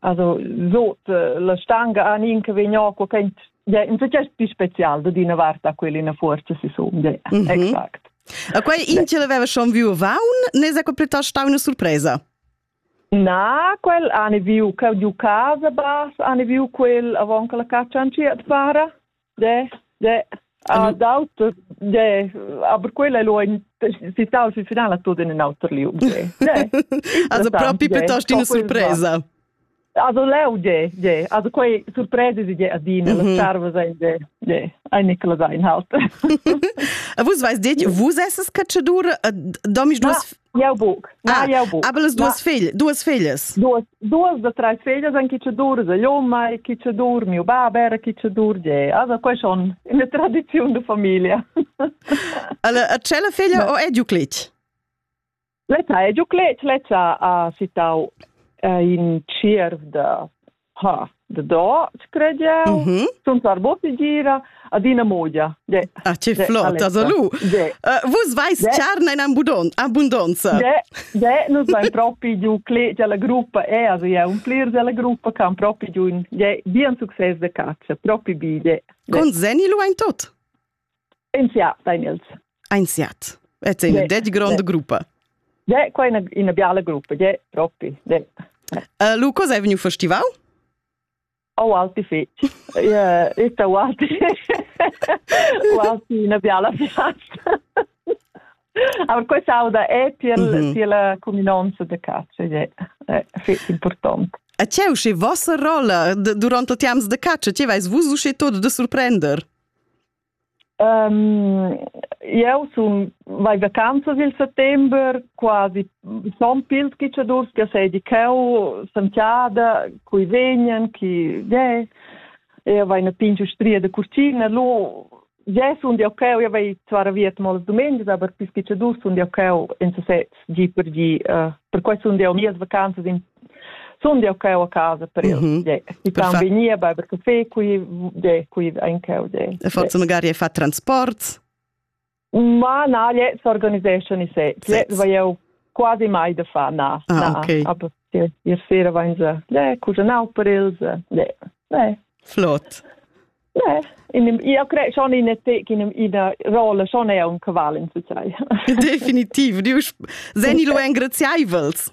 also sot eh, la stanga an in che vegn qua che in success più special da dina varta quella in forza si somma mhm. exact a quei in ce l'aveva schon viu vaun ne sa plitost stau una surpresa Na, quel ane viu che giu casa bas, ane viu quel avon che la caccia an ciat para. de, de, ha d'auto, de, aber quella è lo in citau si finale tutto in un altro lieu. Also proprio piuttosto una sorpresa. Also leu de, de, also quei sorpresa si de adina, la serva sein de, de, ein Nicola sein halt. Vus weißt dit, vus esses Cacciadur, domis duas Jau buc. Na, ah, jau buc. Aber las duas, figl, duas figlias? Duas, duas da treis figlias en chi che durza l'oma e chi che dur miu bab era chi che dur ge. Also quei schon eine tradizion de famiglia. Alla a cella figlia o è Euclid? Leta è Euclid, leta ha sittau in cirf da ha da scrediau mm -hmm. sun sarbo gira adina modia de ah che flot also lu uh, vus vais charna in abundon abundonza de de nus vain propi giu cle la gruppa è eh, also ja un plir della gruppa kan propi giu de bien succes de caccia propi bi de con zeni lu ein tot Ein siat, Daniels. Ein siat. Et è un det grande gruppa. De, qua è una, una biala gruppa, de, proprio. De. Uh, Lu, cosa è venido festival? Oh, alti feci. Yeah, sta ualti. ualti una biala piazza. Aber questo auda è per, mm -hmm. per la cuminanza de caccia, è, è feci importante. E c'è uscì vostra rolla durante i tempi de caccia? Ci vais vus uscì tutto de sorprendere? Jeu sun vai vacanzas il settember, quasi son pil tgitschadurs che seigi cheu, Santiada, cui vegnan, chi ge. Eu vai na pingia stria da curtina, lu Jeu sun jau cheu, jau vai zuara viet molas dumengias, aber pis tgitschadurs sun jau cheu in sesez gi per gi. Uh, per quai sun jau mias vacanzas in Sun jau cheu a casa per el. Mm -hmm. I fan vegnir, beiber café qui, de, qui ein cheu. De, e forse magari hai fatto transports? Ma na, je s'organiseschan i se. Je vai jau quasi mai da fa, na. Ah, na, okay. Aber ihr sera waren sie, le, cuginau per els, le, le. Flott. Ne, in, io credo schon in in una rolla schon è un cavallo in tutto. Definitiv, Diu, seni lu engraziaivels.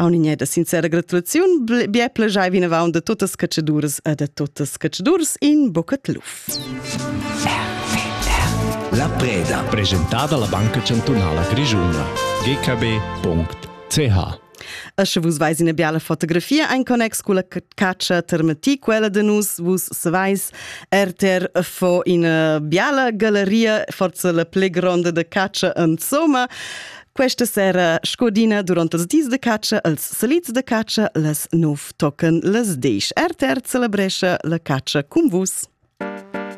Auninè da sincera gratulaziun, bia plajai vinavant da tuttas catschadurs e da tuttas catschadurs in Bocat Luf. La preda. Presentada la Banca Chantunala Grischuna. gkb.ch E sche vus veis ina biala fotografia ein connex cu la caccia termati quella de nus, vus savais, RTR fo ina biala galleria, forse la pli gronda de caccia insomma. Questa sera scodina durant els dis de caccia, els salits de caccia, les nov tochen les desch. RTR celebrescha la caccia cun vus.